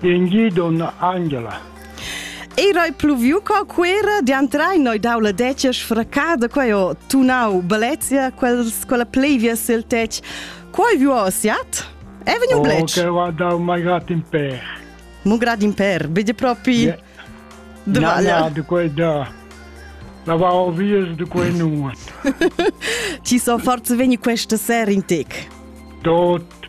Engi donna Angela. Era pluviu co quera di antrai noi dau la decia sfraccada quei ho tunau Balezia quels quella plevia sil tec. Quei vi ho siat? È vegnu blec? Oh, che va dau mai grat in per. Mu grat in per, vedi propri yeah. de valle. de quei da. La va ho vies de quei nuot. Ti so forse vegni questa sera in tec. Dot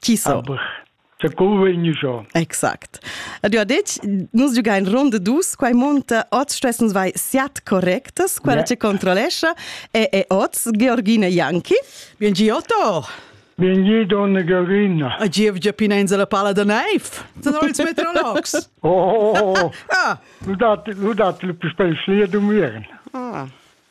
Chi so? Sa co vegn giò? Exact. Ed io ha detg, nus giugain ronda dus, quai monta, oz stessens vai siat correctas, quella yeah. che controllescha e, e oz Georgina Janki. Bien Giotto! Bienvenue, donna Georgina. A gievgia pinenza la palla da neiv. Sono ils meteorologs. Oh, oh, oh. Ah. Lu dat lu dat lu per spezial du miern. Ah.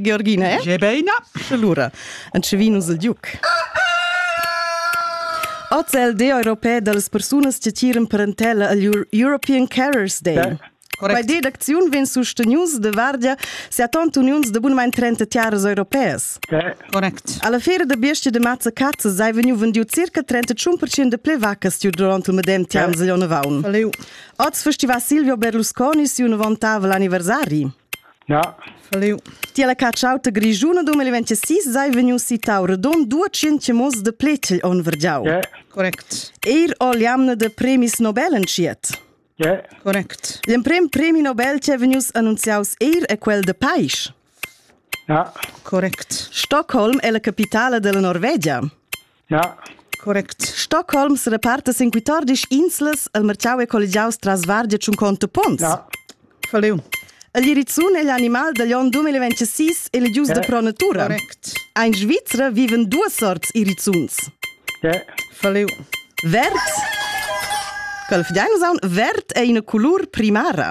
Georgina è? Gebeina. Lura, en Cevinus il Duc. Oz è il Day europeo delle persone che tiran parentela agl European Carers Day. Yeah. Quella deducziun vegn sustenius de vardia seatant uniuns de bunmain 30 tiaras europeas. Correct. Alla feira de besti de mazza cazza sei vegniu vendiu circa 31% de ple vaccas durant il medem tiam yeah. Vaun. Oz festiva Silvio Berlusconi siu novantavel anniversari. Ja. Salut. Ti la cacciauta grigiuna 2026 sei vegniu citau redon 200 mos de pletel on vergiau. Yeah. Correct. Eir o liamne de premis Nobel entschiet. Yeah. Correct. L'emprem premi Nobel che vegnius annunziaus eir è quel de Pais. Ja. Correct. Stockholm è la capitale della Norvegia. Ja. Correct. Stockholms reparta sin quitordis inslas el merciau e collegiaus tras Vardia tschun conto pons. Ja. Faliu. El Irizun è l'animal dagl onn 2026 elegius da pro natura. Correct. Ein Svizra viven duas sorts Irizuns. Ja. Faliu. Verd. Calfdeinus aun verd è ina colur primara.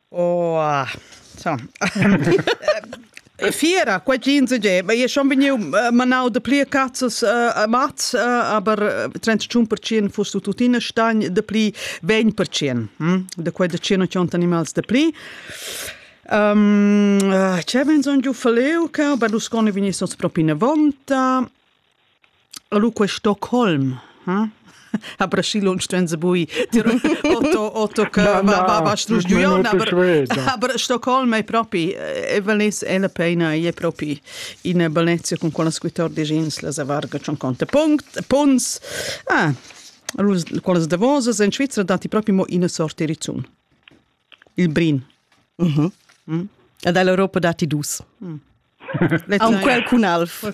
Oh so Fiera quai jeans ge ma io schon vegniu manau da pli cazzas a mats aber 31% fuss tu tuttina stagn da pli 20% da quai da 100 animals da pli C'è vegn son giu faleu che ba lu scone vegni sos propi ne vonta Allo quel Stockholm, hm? ha braschi lunsch venza bui dir Otto Otto che va va studion aber Stockholm è propi e Valencia è la pena è propi in Valencia con quella scrittor di jeans la zavarga c'on conta punct punts ah quelle davosas in Svizzera dati proprio mo una sorte rizzun il brin mhm mm ed all'Europa dati dus mm. Aun quel cun alf.